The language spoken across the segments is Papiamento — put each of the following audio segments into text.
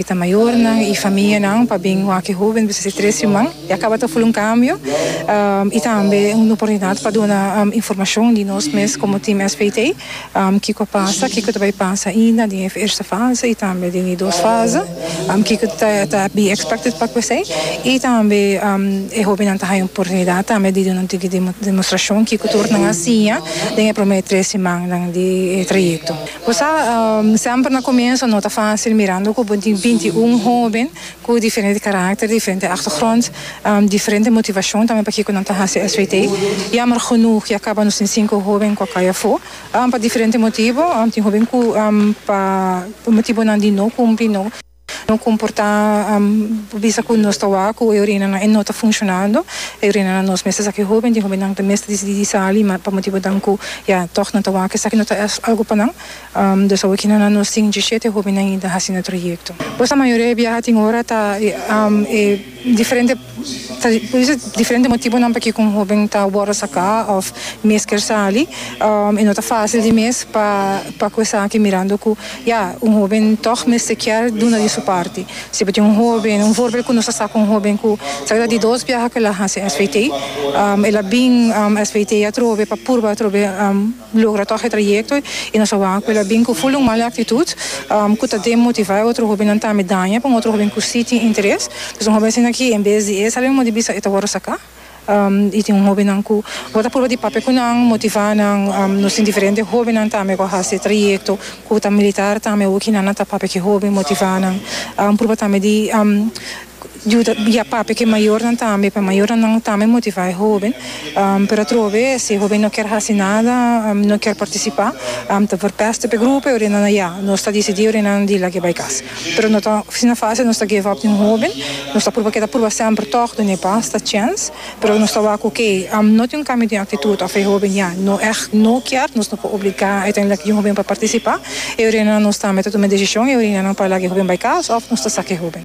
E ta mayornan y famianan pa bin wak e hoben di Busisi Tres Riman. E a caba ta ofri un cambio y tambe un oportunidad pa duna informacion di nos mes como Team SPT, kico a pasa, kico ta bay pasa ainda den e eerste fase y tambe den e dos fase, kico ta be expected pa cu esey y tambe e hobennan ta haya un oportunidad tambe di duna un tiki demostracion kico tur nan a siña den e prome tres rimannan di e trayecto. Bo sa, semper na comienso no ta facil mirando cu bo tin binti y un hoben cu diferente caracter, diferente achtergrond, diferente motivacion tambe pakico nan ta haci SWT. Jammer genoeg ya caba nos tin cinco hoben cu a cay afo pa diferente motibo. Tin hoben cu pa motibonan di no cumpli no. No comporta bisa cu nos ta wak cu e orinanan e no ta funcionando e orinanan nos mes esaki hoben di hobennan ta mester dicidi di sali ma pa motibonan cu ya toch nan ta wak esaki no ta algo pa nan dus awe kina nan nos tin diecisiete hobennan y ta haci na trayecto pues la mayoria e biaha tin ora ta e diferente Ta bisa diferente motibonan p'e ku un hóben ta wòrdu saká òf mes ker sali. E no ta fásil di mes pa pa ku esaki mirando ku ya un hóben tòg mester kier duna di su parti. Si bo tin un hóben, un vòrbel ku nos a sa ku un hóben ku sa ke ta di dos biaha ku el a hasi SVT, el a bin SVT atrobe pa purba atrobe logra tòg e trayekto i nos a wak ku el a bin ku ful un mal aktitut ku ta demotivá e otro hóbennan ta mi daña pa un otro hóben ku sí tin interes. Pues un hóben asina aki en bes di e sal modo di bisa e ta wòrdu saká i tin un hóbennan ku bo ta purba di papia ku nan, motivá nan. Nos tin diferente hóbennan tambe ku a hasi e trayekto ku ta militar tambe. Awor ki nannan ta papia ku e hóben, motivá nan, purba tambe di Yuda bia papia ku e mayornan tambe, pa e mayornan nan tambe motivá e hóben. Pero atrobe si e hóben no kier hasi nada, no kier partisipá, ta vèrpèst op e grupo i ora nan a ya, nos ta disidí ora nan di lag'é bai kas. Pero no ta asina fásil nos ta give up di un hóben, nos ta pruba, keda pruba semper tòg, duna e basta chèns, pero nos ta wak ku ke no tin un kambio den aktitut òf e hóben ya no èg no kier, nos no por obligá uiteindelik di un hóben pa partisipá, e ora nan nos tambe ta tuma e desishon, e ora nan pa laga e hóben bai kas òf nos ta saka e hóben.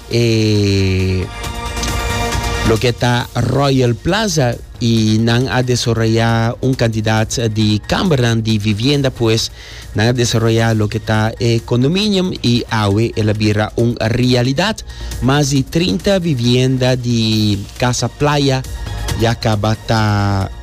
E loke ta Royal Plaza y nan a desarrolla un cantidad di kambernan di vivienda pues nan a desarrolla loke ta e condominium y awe el a bira un realidad. Mas di trinta vivienda di casa playa ya caba ta